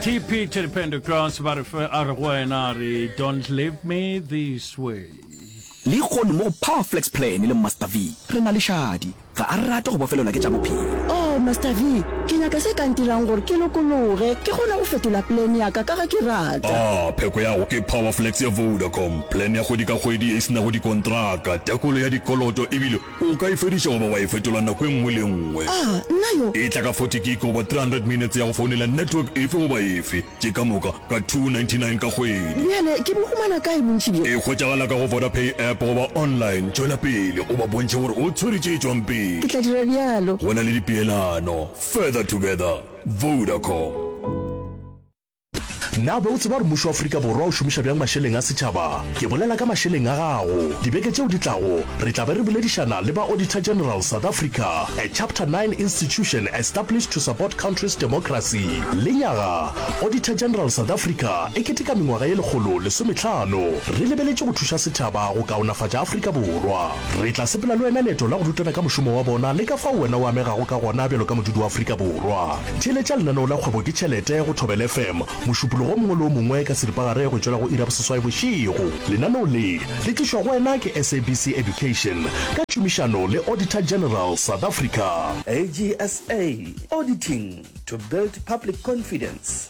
tp to the pentacross ba re fe a re go wena re don't leave me this way le ikgone mo go power flex plan le master v re na le šadi ga a rate go bofelelwa ke tša bophelo Oh, Master V, ke nyaka se ka ntirang gore ke lokologe, ke kgone go fetola plan ya ka ka ge ke rata. A pheko ya go ke Powerflex ya Vodacom, plan ya kgwedi ka kgwedi e se nago dikontraka, tekolo ya dikoloto ebile O ka e fediša goba wa e fetola nako e nngwe le e nngwe. A nna yo? E tla ka 40 gig goba 300 minutes ya go founela network efe goba efe, tše ka moka ka 299 ka kgwedi. Bjale ke bo humana kae bontši bjo? E hwetšagala ka go Vodapay app goba online. Tšwela pele o ba bontšhe gore o tshwere tše tšwang pele. Ke tla dira bjalo. Go na le dipeelano. Further together. Vodacom. Na o be o tseba gore mmušo wa Afrika Borwa o šomiša bjang mašeleng a setšhaba? Ke bolela ka mašeleng a gago. Dibeke tšeo di tlago, re tla be re boledišana le ba Auditor General South Africa, a Chapter Nine institution established to support country's democracy. Lenyaga, Auditor General South Africa e keteka mengwaga ye lekgolo lesometlhano. Re lebeletše go thuša setšhaba go kaonafatša Afrika Borwa. Re tla sepela le wena leeto la go rutana ka mošomo wa bona le ka fao wena o amegago ka gona bjalo ka modudi wa Afrika Borwa. Theeletša lenaneo la Kgwebo ke Tšhelete go Thobela FM mošupologo o mongwe le o mongwe ka seripagare go tšwela go iri ya boseswai bošego. Lenaneo le le tlišwa go wena ke SABC Education ka tšhomišano le Auditor General South Africa. AGSA, Auditing to build public confidence.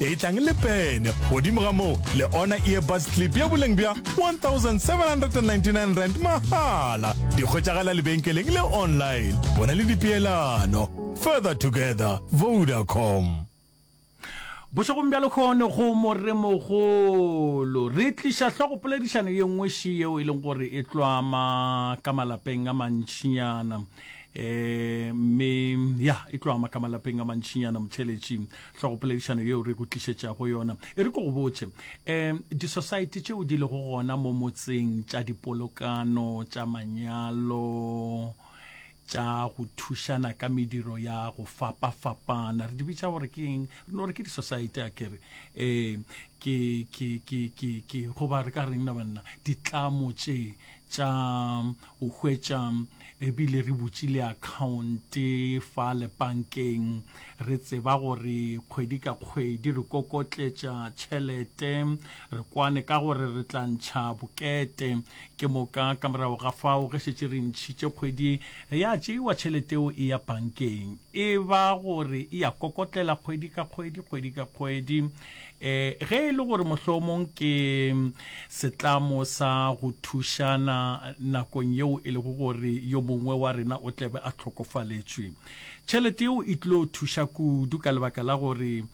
e tlang le pene godimo ga moo le ona earbuds clip ya boleng bja 1799 rand mahala di kgwetšagala lebenkeleng le online go na le dipeelano further together vodacom Bošegong bja lehono go Moremogolo re tliša hlogopoledišano ye nngweši yeo e leng gore e tlwama ka malapeng a mantšinyana um mme ya e tlwama ka malapeng a mantšinyana motheletši Hlogopoledišano yeo re go tlišetšago yona e re ke go botše, um disosaete tšeo di lego gona mo motseng tša dipolokano, tša manyalo, tša go thušana ka mediro ya go fapafapana, re di bitša gore ke eng? Re no re ke disosaete a ke re? Ee, ke, ke, ke, ke, ke, goba re ka reng na banna? Ditlamo tše tša o hwetša re bile re butše le account fa le bankeng re tseba gore kgwedi ka kgwedi re kokotletša tšhelete re kwane ka gore re tla ntšha bokete ke moka ka morago ga fao ge šetše re ntšhitše kgwedi ya tšeiwa tšhelete eo e ya bankeng e ba gore e ya kokotlela kgwedi ka kgwedi kgwedi ka kgwedi Eh, ge e le gore mohlomong ke setlamo sa go thušana nakong yeo e lego gore yo mongwe wa rena o tlebe a tlhokofaletšwe tšhelete yeo e tlo thuša kudu ka lebaka la gore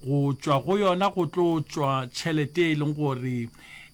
go tšwa go yona go tlo tšwa tšhelete e leng gore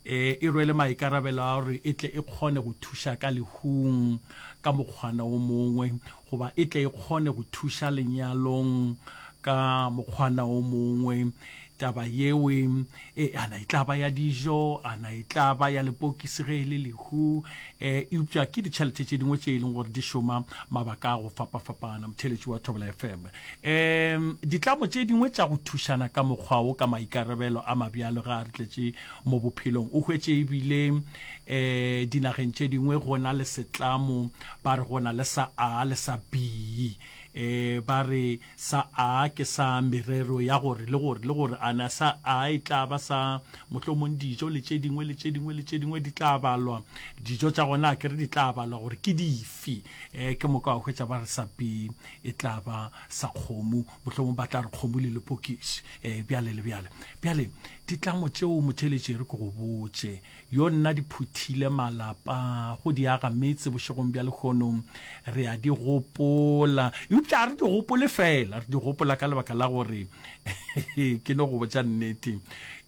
eh, e rwele maikarabelo a gore e tle e kgone go thuša ka lehung ka mokgwana o mongwe goba e tle e kgone go thuša lenyalong ka mokgwana o mongwe, taba yeo e, a na e tla ba ya dijo, a na e tla ba ya lepokisi ge e le lehu, e, eupša ke ditšhelete tše dingwe tše e leng gore di šoma mabaka a go fapafapana. Motheeletši wa Thobela FM. E, ditlamo tše dingwe tša go thušana ka mokgwa wo ka maikarabelo a mabjalo ge a re tletše mo bophelong. O hwetše ebile e, dinageng tše dingwe go na le setlamo Ba re go na le sa A le sa B. E, ba re sa A ke sa merero ya gore le gore le gore a na sa A e tla ba sa mohlomong dijo le tše dingwe le tše dingwe le tše dingwe di tla balwa. Dijo tša gona a kere di tla balwa gore ke dife. E, ke moka wa hwetša ba re sa B e tla ba sa kgomo, mohlomong ba tla re kgomo le lepokisi, e, bjale le bjale. Bjale, ditlamo tšeo motheeletši e re ke go botše, yo nna di phuthile malapa go di aga metse bošegong bja lehono re a di gopola eupša re di gopole fela re di gopola ka lebaka la gore ke no go botša nnete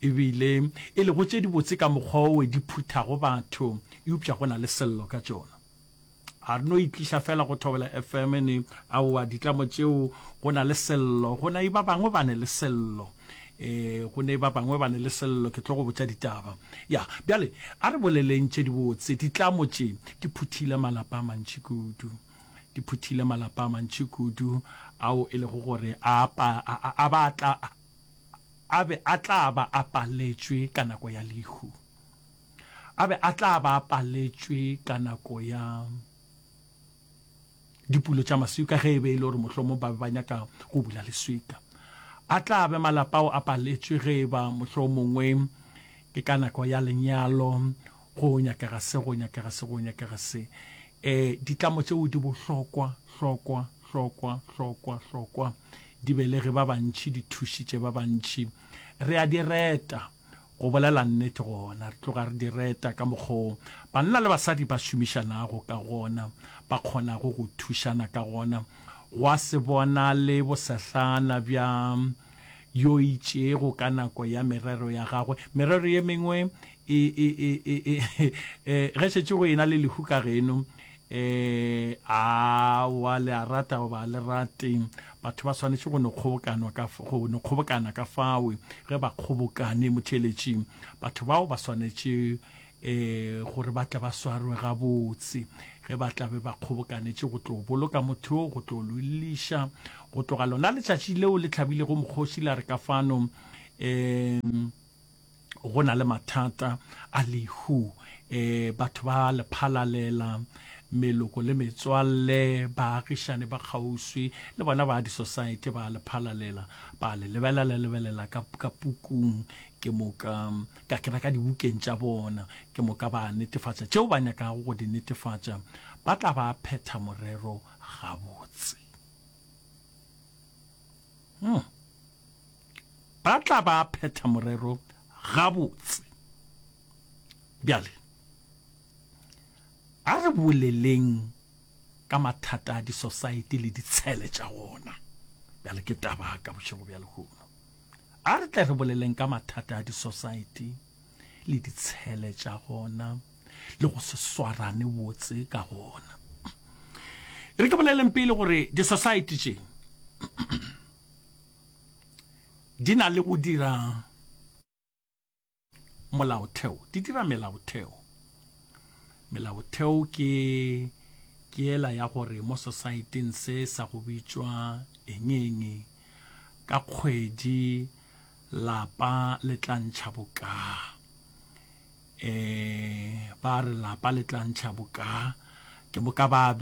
ebile e lego tše dibotse ka mokgwa owe di phuthago batho eupša go na le sello ka tšona A re no itliša fela go Thobela FM ne? Aowa, ditlamo tšeo go na le Sello, go na e ba bangwe ba ne le Sello. E, go ne e ba bangwe ba ne le Sello, ke tlo go botša ditaba. Ya, bjale a re boleleng tše dibotse. Ditlamo tše di phuthile malapa a mantši kudu. Di phuthile malapa a mantši kudu ao e lego gore a, pa, a, a, a ba tla, a be a tla ba a paletšwe ka nako ya lehu. A be a tla ba a paletšwe ka nako ya dipulo tša maswika ge e be e le gore mohlomong ba be ba nyaka go bula leswika. A tla be malapa ao a paletšwe ge e ba mohlomongwe ke ka nako ya lenyalo go nyakega se go nyakega se go nyakega se. Um ditlamo tšeo di bohlokwa hlokwa hlokwa hlokwa hlokwa di belege ba bantši di thušitše ba bantši. Re a di reta Go bolela nnete gona, re tloga re di reta ka mokgwa o banna le basadi ba šomišanago ka gona, ba kgonago go thušana ka gona. Gwa se bonale bosehlana bja yo itšego ka nako ya merero ya gagwe. Merero ye mengwe e, e, e, e, e, e, ge šetše go ena le lehu ka geno, Ee, aowa, le a rata goba ga le rate, batho ba swanetše go no kgobokanwa ka, go no kgobokana ka fao, ge ba kgobokane, motheeletši. Batho bao ba swanetše, ee, gore ba tle ba swarwe gabotse, ge ba tla be ba kgobokanetše go tlo boloka motho yo, go tlo lo lliša, go tloga lona letšatši leo le tlhabilego mokgoši la re ka fano, ee. go na le mathata a lehu e batho ba lephalalela meloko le metswalle baagišane ba kgauswi le bona ba di-society ba lephalalela ba le lebelela lebelela ka, ka pukung ke moka ka kena ka dibukeng tša bona ke moka ba netefatša tšeo ba nyakago go di netefatša ba tla ba phetha morero gabotse hmm. ba tla ba phetha morero gabotse. Bjale, a re boleleng ka mathata a disosaete le ditshele tša wona. Bjale ke taba ka bošego bja lehono. A re tle re boleleng ka mathata a disosaete le ditshele tša gona le go se swarane botse ka gona. Re ke boleleng pele gore disosaete tše di na le go dira molaotheo di dira melaotheo melaotheo ke ke ela ya gore mo society-ng se sa go bitšwa engeng ka kgwedi lapa le tla ntšha bokaa E ba re lapa le tla ntšha boka ke boka ba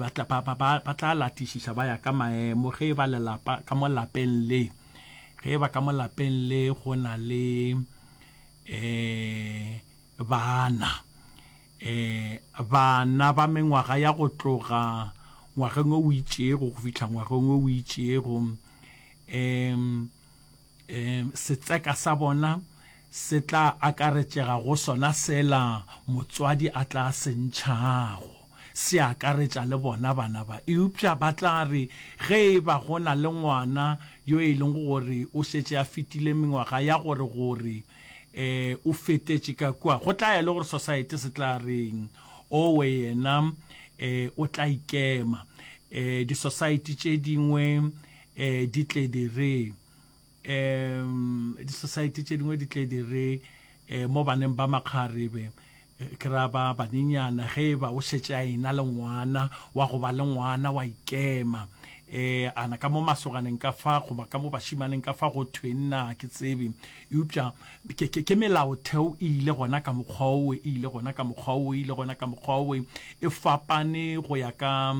ba tla latišiša ba ya ka maemo ge e ba lelapa ka mo lapeng le ge e ba ka mo lapeng le go na le e bana e bana ba mengwaga ya go tloga ngwageng o itšego go fihla ngwageng o itšego e Setseka sa bona se tla akaretšega go sona sela motswadi a tla se ntšhago, se akaretša le bona bana ba. Eupša ba tla re ge e ba go na le ngwana yo e lego gore o šetše a fetile mengwaga ya gore gore o fetetše ka kua, go tla ya le gore Society se tla reng, Owe yena o tla ikema. Di-society tše dingwe um di tle di re um di-society tše dingwe di tle di re um mo baneng ba makgarebe ke ra ba banenyana ge e ba o šetše a ena le ngwana wa go ba le ngwana wa ikema um ana ka mo masoganeng ka fa goba ka mo bašimaneng ka fa go thwe nna ke tsebe eupša ke melaotheo e ile gona ka mokgwa owe e ile gona ka mokgwa owe e ile gona ka mokgwa owe e fapane go ya ka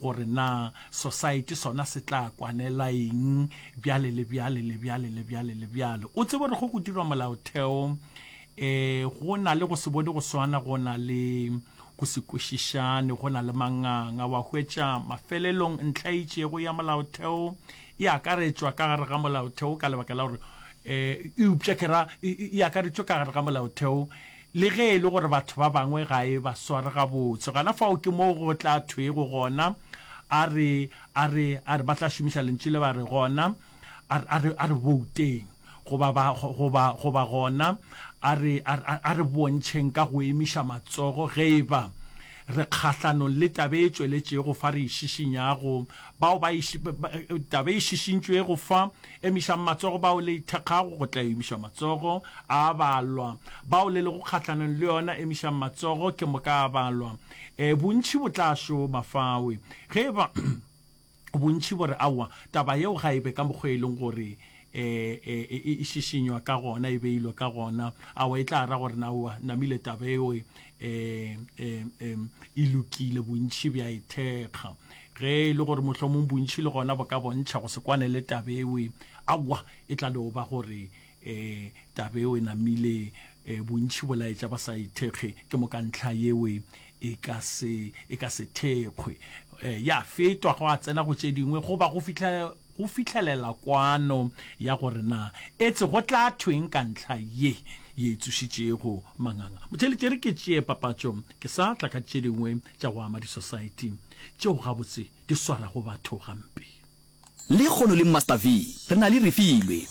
gore na Sosaete sona se tla kwanela eng bjale le bjale le bjale le bjale le bjale. O tsebe gore ge go dirwa Molaotheo e go na le go se bone go swana, go na le go se kwešišane, go na le manganga. Wa hwetša mafelelong ntlha e itšego ya Molaotheo e akaretšwa ka gare ga Molaotheo ka lebaka la gore e eupša ke ra e akaretšwe ka gare ga Molaotheo. Le ge e le gore batho ba bangwe ga e ba sware gabotse, gona fao ke moo go tla thwego gona, A re, a re, a re, ba tla šomiša Lentšu le ba re, gona, a re, a re, a re bouteng, goba ba, goba, goba gona, a re, a re, a re bontšheng ka go emiša matsogo, ge e ba re kgahlanong le taba e tšweletšego fa re e šišinyago, bao ba e, taba e šišintšwego fa Emišang matsogo bao le ithekgago, go tla emišwa matsogo a balwa. Bao le lego kgahlanong le yona, emišang matsogo, ke moka a balwa. E, bontši bo tla šoma fawe. Ge e ba bontši bo re, Aowa, taba yeo ga e be ka mokgwa e leng gore e, e, e, e šišinywa ka gona, e beilwe ka gona, aowa, e tla ra gore, Aowa, namile taba eo e, e, e, e, e lokile bontši bja e thekga ge e le gore mohlomong bontši le gona bo ka bontšha go se kwane le tabewe awa e tla no ba gore um tabewe namile um bontši bo laetša ba sa ithekge ke mo ka ntlha yewe e ka se e ka se thekgwe um ya fetwa go a tsena go tše dingwe goba go fitlha go fihlelela kwano ya gore na etse go tla thweng ka ntlha ye ye e tsošitšego manganga. Motšheletši e re ke tšee papatšo ke sa tla ka tše dingwe tša go ama disosaeti tšeo gabotse di swarago batho gampe. Lehono le Master V re na le Refilwe.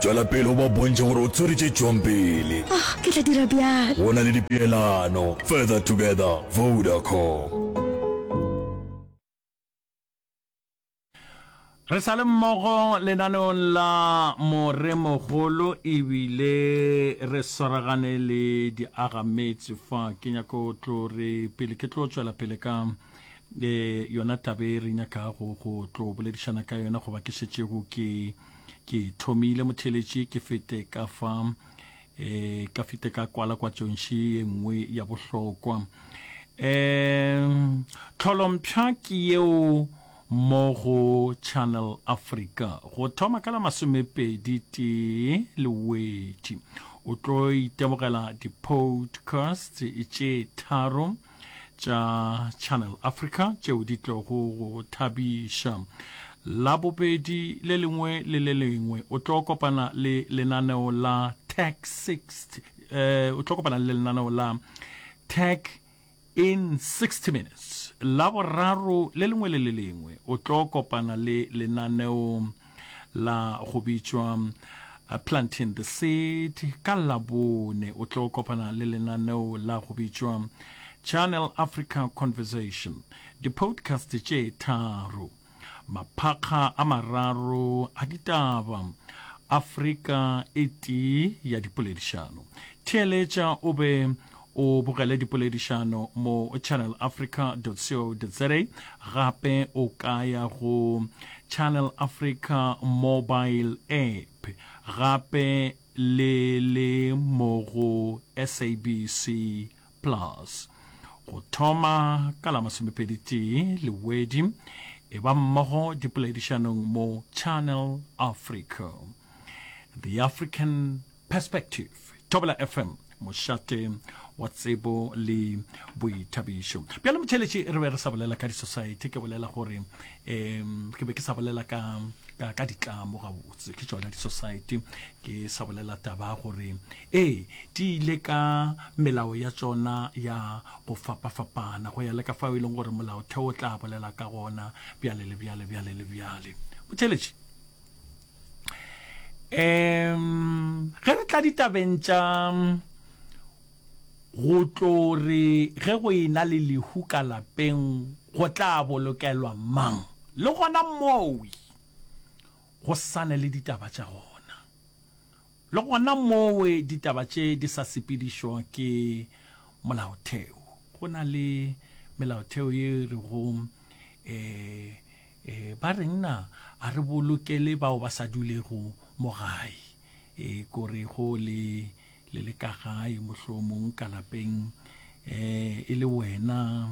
Tšwela pele o ba bontšhe gore o tshwere tše tšwang pele. Oh, ke tla dira bjalo. Go na le dipeelano. Further together, Vodacom. Re sa le mmogo lenaneong la Moremogolo ebile re swaragane le diagametse fa ke nyaka go tlo re pele ke tlo tswela pele ka eh, yona tabe re nyaka go go tlo boledišana ka yona goba ke šetšego ke ke thomile motheletši ke fete ka fa e ka fete ka kwala kwa tšontši ye nngwe ya bohlokwa um tlholompša ke yeo mo go channel africa go thoma ka la masomepedi tee lewetši o tlo itemogela di-podcast tše tharo tša Channel Africa tšeo di tlogo go thabiša. La bobedi le lengwe le le lengwe o tlo kopana le lenaneo la Tech 60 eh, o tlo kopana le lenaneo la Tech in 60 minutes. La boraro le lengwe le le lengwe o tlo kopana le lenaneo la go bitšwa uh, Planting the Seed. Ka Labone o tlo kopana le lenaneo la go bitšwa Channel Africa Conversation, di-podcast tše tharo, maphakga a mararo a ditaba, Afrika e tee ya dipoledišano. Theeletša o be O bogele dipoledišano mo channelafrica co za. Gape o ka ya go Channel Africa mobile app gape le le mo go SABC Plus. Go thoma ka la masomepedi-tee Lewedi, e ba mmogo dipoledišanong mo Channel Africa. The African Perspective, Thobela FM, mošate wa tsebo le boithabišo. Bjale motšheletši re be re sa bolela ka di-society, ke bolela gore um ke be ke sa bolela ka ka, ka ditlamo gabotse ke tsona di-society ke sa bolela taba gore ee di ile ka melao ya tsona ya go fapafapana go ya le ka fao e leng gore molaotheo o tla bolela ka gona bjale le bjale bjale le bjale motšheletši um ge re tla ditabeng tša go tlo re ge go ena le lehu ka lapeng go tla bolokelwa mang le gona mowi go sane le ditaba tša gona le gona mowe ditaba tše di sa sepedišo ke molaotheo go na le melaotheo ye re go um eh, E, ba reng na a re bolokele bao ba sa dulego mo gae? E, kore go le le le ka gae mohlomong ka lapeng e, e le wena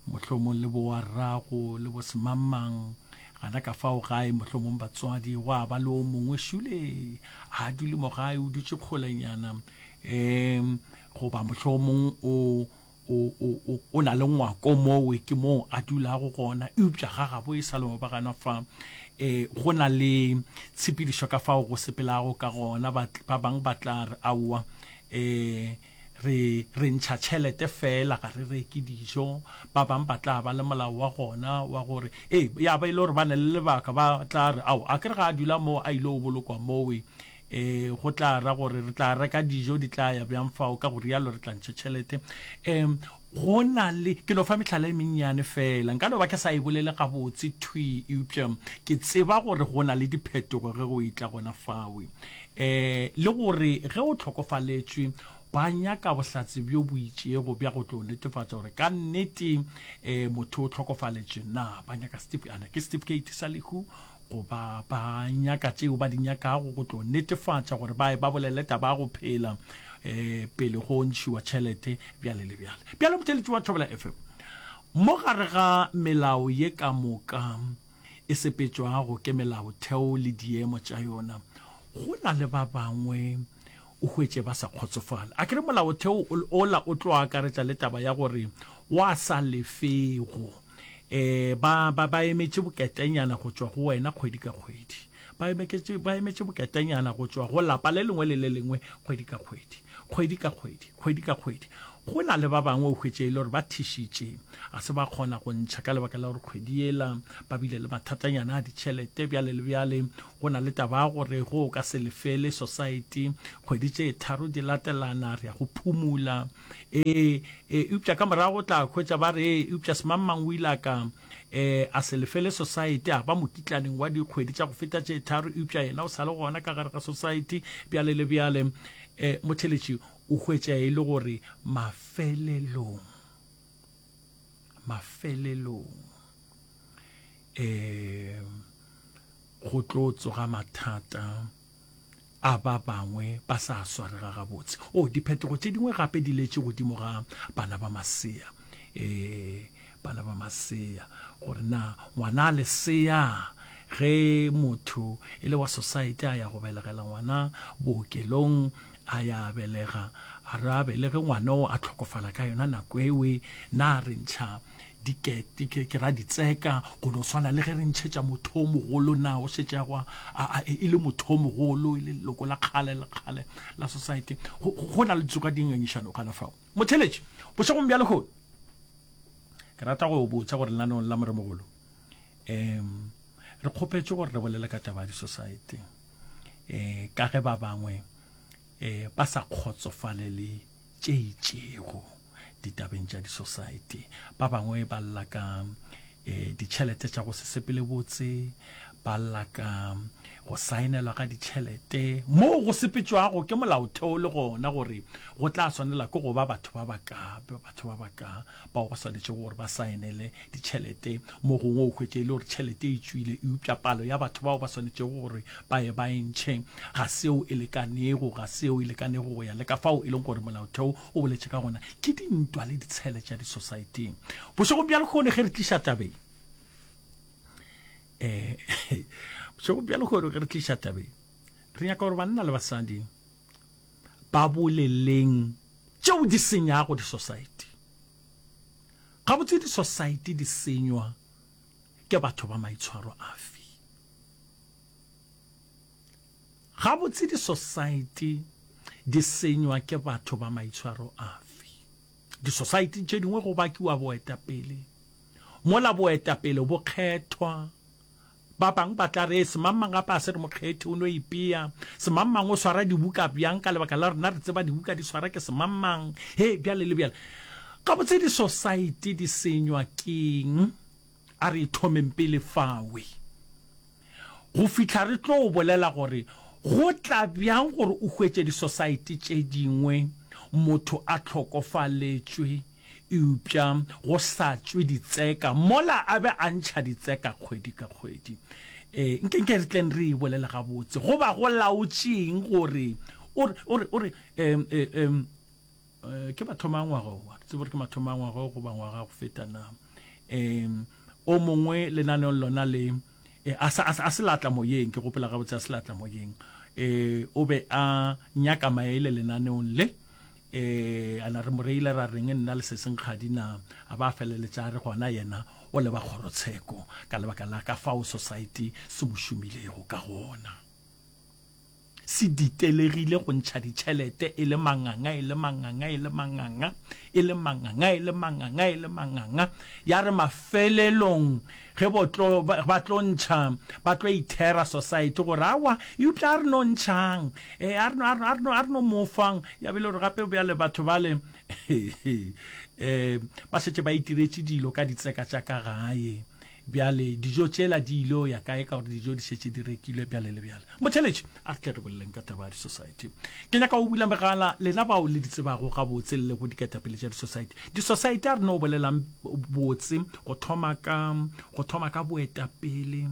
mohlomong le bowa rrago le bo semamang gana ka fao gae mohlomong batswadi go a ba le o mongwe šule a dule mo gae o dutše kgolenyana um goba mohlomong o o, o, o, o na le ngwako mowe, ke moo a dulago gona, eupša ga gabo e sa le mobaganwa fa. E, go na le tshepedišo ka fao go sepelago ka gona, ba, ba bang ba tla re, Aowa, e, re, re ntšha tšhelete feela, ga re reke dijo. Ba bang ba tla ba le molao wa gona wa gore, e, ya ba e le gore ba na le lebaka, ba tla re, Ao, akere ga a dula moo a ile go bolokwa mowe. E, go tla ra gore re tla reka dijo, di tla ya bjang fao, ka go rialo re tla ntšha tšhelete. E, go na le, ke no fa mehlala e mennyane feela, nka no ba ke sa e bolele gabotse thwi, eupša ke tseba gore go na le diphetogo ge go etla gona fao. E, le gore ge o hlokofaletšwe, ba nyaka bohlatse bjo bo itšego bja go tlo netefatša gore ka nnete e, motho o hlokofaletšwe. Na ba nyaka setif, a na ke setifikeiti sa lehu? goba ba nyaka tšeo ba di nyakago go tlo netefatša gore ba e ba bolele taba ya go phela um pele go ntšhiwa tšhelete bjale le bjale bjale motheletši wa thobela fm mo gare ga melao ye ka moka e sepetšwago ke melaotheo le diemo tša yona go na le ba bangwe o hwetše ba sa kgotsofale a kere molaotheo ola o tlo akaretša le taba ya gore wa sa lefego E, ba, ba, ba emetše boketenyana go tšwa go wena kgwedi ka kgwedi. Ba emetše, ba emetše boketenyana go tšwa go lapa le lengwe le le lengwe kgwedi ka kgwedi, kgwedi ka kgwedi, kgwedi ka kgwedi. Go na le ba bangwe o hwetše e le gore ba thišitše, a se ba kgona go ntšha ka lebaka la gore kgwedi yela ba bile le mathatanyana a ditšhelete, bjale le bjale go na le taba ya gore go o ka se lefele Society kgwedi tše tharo di latelana, re ya go phumula. Ee, e, eupša ka morago o tla hwetša ba re, ee, eupša semangmang o ile a ka e, a se lefele society, a ba mokitlaneng wa dikgwedi tša go feta tše tharo, eupša yena o sa le gona ka gare ga society, bjale le bjale. E, motheletši o hwetša e le gore mafelelong, mafelelong e, go tlo tsoga mathata. a ba bangwe ba sa swarega gabotse o oh, diphetogo tše dingwe gape di letše godimo ga bana ba masea e bana ba masea gore na ngwana a lesea ge motho e le wa society a ya go belegela ngwana bookelong a ya belega a re a belege ngwana o a tlhokofala ka yona nako ewe na re ntšha ke ra ditseka go no swana le ge re ntšhetša motho o mogolo na o šetšegwa e, e le motho o mogolo e le leloko la kgale le kgale la society go na le ditso ka dingangišano kana fao motheletši bošegong bja lehono ke rata go botsa gore lenaneong la moremogolo um re kgopetše gore re bolele ka taba ya di-society um ka ge ba bangwe um ba sa kgotsofalele tše itšego ditabeng tša disosaete. Ba bangwe ba lla ka e, ditšhelete tša go se sepele botse, ba lla ka go saenelwa ga ditšhelete moo go sepetšwago ke molaotheo le gona gore go tla swanela ke go ba batho ba baka, batho ba baka. bao ba swanetšego gore ba saenele ditšhelete mo gongwe o hwetše e le gore tšhelete e tšwile eupša palo ya batho bao ba swanetšego gore ba ye ba e ntšhe ga seo e lekanego ga seo e lekanego go ya le ka fao e leng gore molaotheo o boletše ka gona ke dintwa le ditshele tša disosaeteng bošegong bja lekgone ge re tliša tabeng um bošegong bja lekgone ge re tliša tabeng re nyaka gore banna le basadi ba boleleng tšeo di senyago disosaete. Gabotse disosaete di senywa ke batho ba maitshwaro afe? Gabotse disosaete di senywa ke batho ba maitshwaro afe? Disosaete tše dingwe go bakiwa boetapele, mola boetapele bo kgethwa Ba bang ba tla re, Semangmang gape ga se re mokgethi, o no ipea. Semangmang o swara dibuka bjang ka lebaka la rena re tseba dibuka di swara ke semangmang? Hee, bjale le bjale. Gabotse disosaete di senywa ke'ng? A re ithomeng pele fawe, go fihla re tlo o bolela gore go tla bjang gore o hwetše disosaete tše dingwe motho a hlokofaletšwe. Eupša go sa tšwe ditseka mola a be a ntšha ditseka kgwedi ka kgwedi. Ee, nkenke re tleng re e bolele gabotse. Go ba go laotše'ng gore o re, o re, o re, em, e, em, e, ke mathomo a ngwaga o, ga ke tsebe gore ke mathomo a ngwaga o goba ngwaga go feta na. Em, o mongwe lenaneong lona le, e, a se, a se, a se latla moyeng, ke gopela gabotse a se latla moyeng. E, o be a nyaka maele lenaneong le. Ee, a na re mo reile ra reng nna le Sesenkgadi na? A ba a feleletša a re gona yena o leba kgorotsheko ka lebaka la ka fao Sosaete se mo šomilego ka gona. Se ditelegile go ntšha ditšhelete e le manganga, e le manganga, e le manganga, e le manganga, e le manganga, e le manganga, ya re mafelelong Ge bo tlo, ba tlo ntšha, ba tlo ithera society gore aowa, eupša a re no ntšhang, ee, a re no, a re no, a re no, a re no mo fang. Ya be e le gore gape bjale batho bale um ba šetše ba itiretše dilo ka ditseka tša ka gae, bjale dijo tšela di il'o ya kae ka gore dijo di šetše di rekilwe, bjale le bjale. Motheeletši, a tle re boleleng ka taba ya di-society ke nyaka o bula megala lena bao le di tsebago gabotse le le go diketapele tša di-society di-society a re no bolelang botse go thoma ka go thoma ka boetapele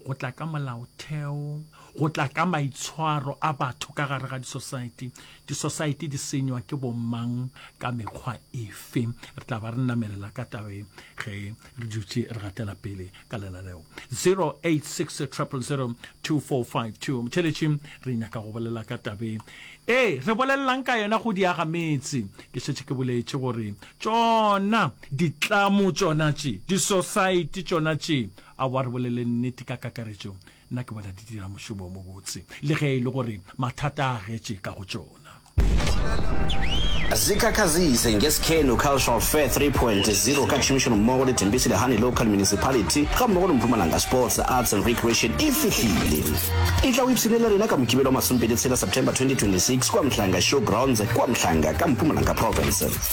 go tla ka molaotheo go tla ka maitshwaro a batho ka gare ga di-society di-society di senywa ke bomang ka mekgwa efe re tla ba re namelela ka tabe ge re dutše re gatela pele ka lela leo 0860002452 motheletši re nyaka go bolela ka tabe ee re bolelelang ka yona go diaga metse ke šetše ke boletše gore tšona ditlamo tšona tše di-society tšona tše a wa re bolele nnete ka kakaretšo Nna ke bona di dira mošomo o mobotse le ge e le gore mathata a agetše ka go tšona. Zikhakhazise ngeSikhenu Cultural Fair 3.0 ka tšhomišanommogo le Thembisile Hani Local Municipality gammogo le Mpumalanga Sports, Arts and Recreation e fihlile. E tla o ipshine le rena ka Mokibelo wa masomepedi tshela, September 2026, kua Mhlanga Showgrounds kua Mhlanga ka Mpumalanga Province.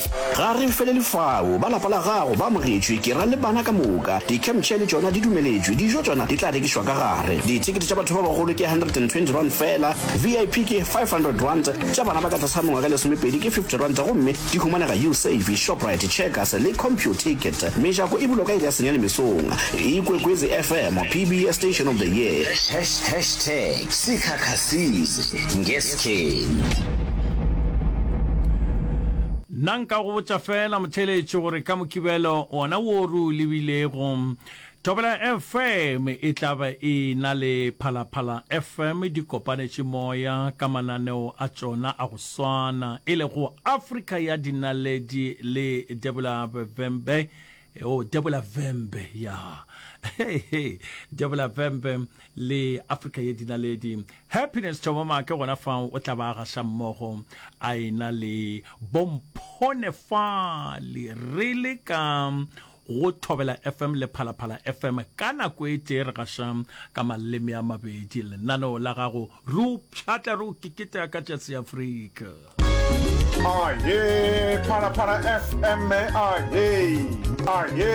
Ga re felele fao. Ba lapa la gago ba amogetšwe, ke ra le bana ka moka. Di-campchair le tšona di dumeletšwe. Dijo tšona di tla rekišwa ka gare. Dithekete tša batho ba bagolo ke R120 feela, VIP ke R500, tša bana ba ka tlase ga mengwaga e lesomepedi ke R50 gomme di humanega Usave, Shoprite, Checkers le CompuTicket. Mejako e bulwa ka iri ya senyane mesong. Ikwekwezi FM, PBS Station of the Year. Hashtag Sikhakha Season, nge King. Nna nka go botša feela motheeletši gore ka Mokibelo wona wo re o lebilego, Thobela FM e tla ba e na le Phalaphala FM di kopanetše moya ka mananeo a tšona a go swana, e lego Afrika ya Dinaledi le Debula Bebembe o debola vembe ya hey, hey. debola vembe le africa ye dinaledi happiness thomama ke gona fa o tla ba gasa mmogo a ena le bomphone fa le re le ka go thobela fm le phalaphala fm ka nako e tee re gasa ka maleme a mabedi lenaneo la gago re o pšhatla re o keketa ka tšatsi afrika aye phalaphala fm aye aye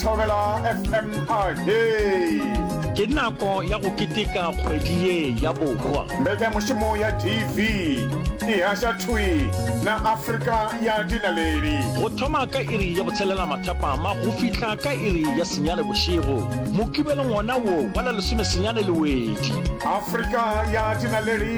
thobela fm aye ke nako ya go keteka kgwedi ye ya bohwa mbekanyamushumo ya tv e gaša thwi na afrika ya dinaledi go thoma ka iri ya botshelela mathapama go fihla ka iri ya senyane bošego mokibelong wona wo wa la lesome senyane lewedi afrika ya dinaledi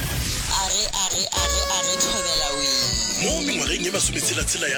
Age, age, age, age, thobela wee. Mo mengwageng ye masometshela-tshela ya.